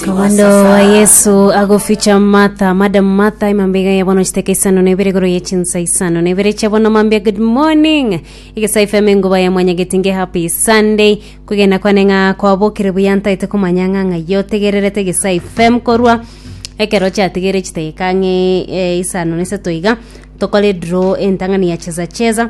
Kawando wa Yesu agoficha Martha, Madam Martha, imambega ya bono chiteka isano na ibere igoro ye chinsa isano na ibere cha bono mambia good morning. Igesa FM enguba ya mwanya getinge happy Sunday. Kugenda kwane ng'a kwabokire buya ntaite komanya ng'a ng'a yotegererete igesa FM korwa ekero chatigere chiteka ng'e eh, isano na isato iga tokore draw entang'ani ya cheza cheza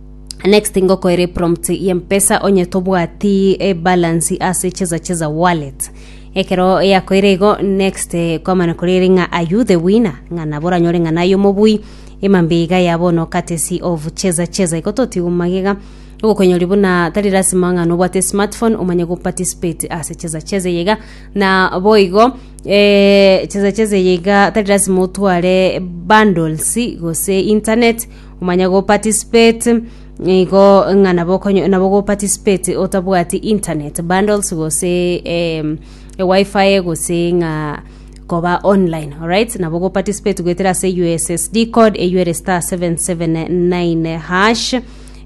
Next ngokoere prompt ye mpesa onye tobwati e balance ase cheza cheza wallet. Ekero yakoire igo next eh, kwamana korere ng'a are you the winner ng'a nabo oranyore ng'a naye omobui emambia iga ya bono courtesy of cheza cheza igo totiga magega ogokonyori buna tari lasima ng'a nobwate smartphone omanye go participate ase cheza cheza yega na boigo eh, cheza cheza yega tari lasima otware bundles gose internet Omanye go participate igo ng'a nabo okonyo- nabo go participate otabwati internet bundles gose em, e wifi gose ng'a koba online alright nabo go participate goetera ase ussd code eywo ere star 779 hash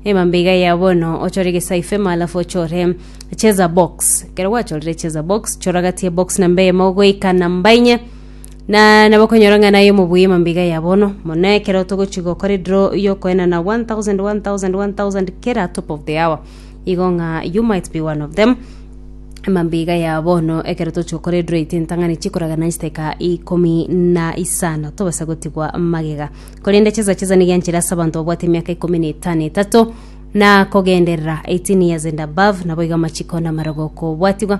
emambe iga ya bono ochore egesaifema alafu ochore cheza box ekero gwachorire cheza box choragatie box namba eyemo goika namba inye na nabo okonyora ng'a naye omobuya emambiga ya bono mono ekero togochia gokora ediro yokoenana 1000 1000 1000 kera top of the hour igo ng'a you might be one of them emambiga ya bono ekero tochia gokora ediro yaito entang'ani chikoragana chidaeka ikomi na isano tobasa gotigwa magega korende chesa chesa nigo enchera ase abanto babwate emiaka ikomi na etano etato na kogenderera 18 years and above naboigo amachiko na amarogo okobwatigwa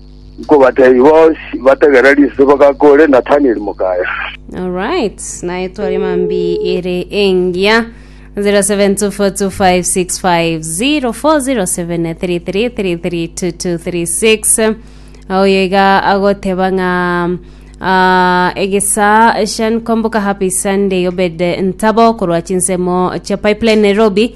Nkobateebia, bonsi bategereri ase bagaaka ore Nathanieli mokaya. Alright, naye twari mambi ere engiya 072425604073332236 oyo iga agoteba ng'a ah, egesa shan komboka happy sunday obed ntabo korwa chinsemo cha pipeline nairobi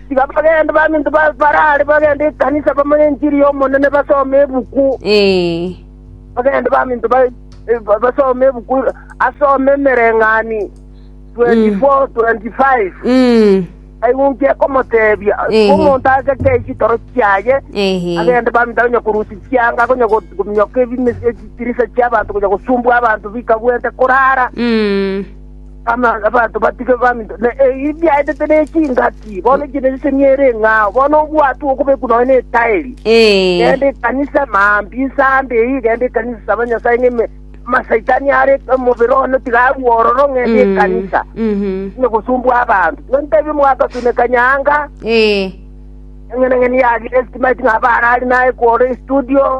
Tiga bagende baminto ba- baraare bagende ekanisa bamanye enchiri y'Omonene, basome ebuku, Ee. bagende baminto ba- eh, ba- basome ebuku, asome emereng'ani 24 25 Mm. aigwe nki ekomotebia Ehe. omonto ageke chitoro chiaye Ehe. agende baminto akonya korusia chianga akonya go- gominyoka ebime- echitirisa chiabanto konya gosumbua abanto bikabwente korara Mm. Abanto batige baminto, na ebi biaetete ne chingaki, bono ekiagera eseni ere ng'a ao, bono obwato bw'okobekwa nonya netaeri. Genda ekanisa maambia ensande eye, genda ekanisa, saba Nyasae ng'a eme- amasaitani are omobere one tiga arue ororo, genda ekanisa, tiga gosumbua abanto. Igo ntebie mwagasuneka nyaanga, eng'enang'eni yagire estimate ng'a abare are naye kworo estudio,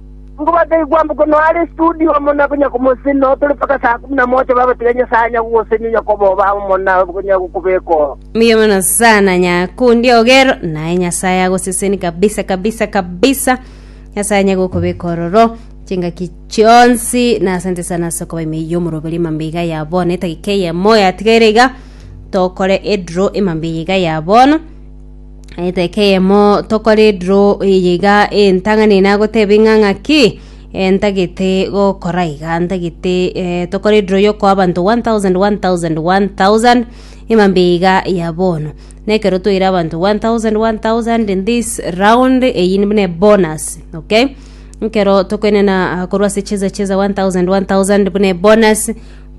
Nkobata ekwambo kono are studio amo na konya komoseni noo tore mpaka saa kumi na moja babatiga Nyasaye anya gogoseni onya koba oba amo na konya gokobeka oo. Mbuya mono sana nyakundi ogero naye nyasaye agoseseni kabisa kabisa kabisa nyasaye anye gokobeka ororo chingaki chionsi na asante sana ase okoba ime yomoroberi emambe iga ya bono etagika eyemo yatigaire iga tokore edro emambe iga ya bono Eteka eyemo tokore draw eye iga entang'ani eye nagoteba ing'a ng'aki eh, ntagete gokora iga ntagete eh, tokore draw yokoa abanto 1000 1000 1000 emambe iga ya bono na ekero toire abanto 1000 1000 in this round eyi buna bonus okay nkero tokoenena ah, korwa ase cheza cheza 1000 1000 buna bonus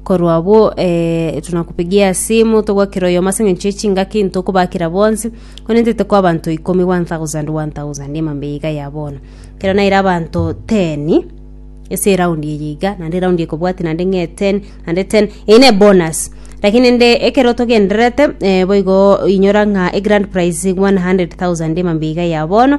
Korwa abwo eh, tunakupigia simu togwakera oyomo ase eng'encho y'echingaki ntokobakera bonsi one ntete kwa abanto ikomi 1000 1000 emambe yiga ya bono kero naire abanto 10 ase eraundi eye iga naende eraundi ekobwati naende ng'e 10 naende 10 eye ne bonus lakini nde ekero togendererete eh, boigo inyora ng'a egrand prize 100000 emambe iga ya bono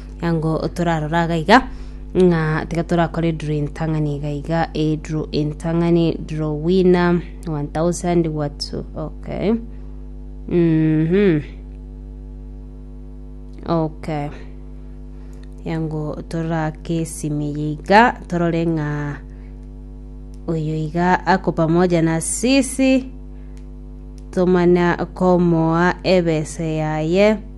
Ango torarora iga iga ng'a tiga torakore draw entang'ani iga iga e draw entang'ani draw winner 1000 what okay mhm okay yango torake esimi iga torore ng'a oyo iga ako pamoja na sisi tomana komoa ebese yaye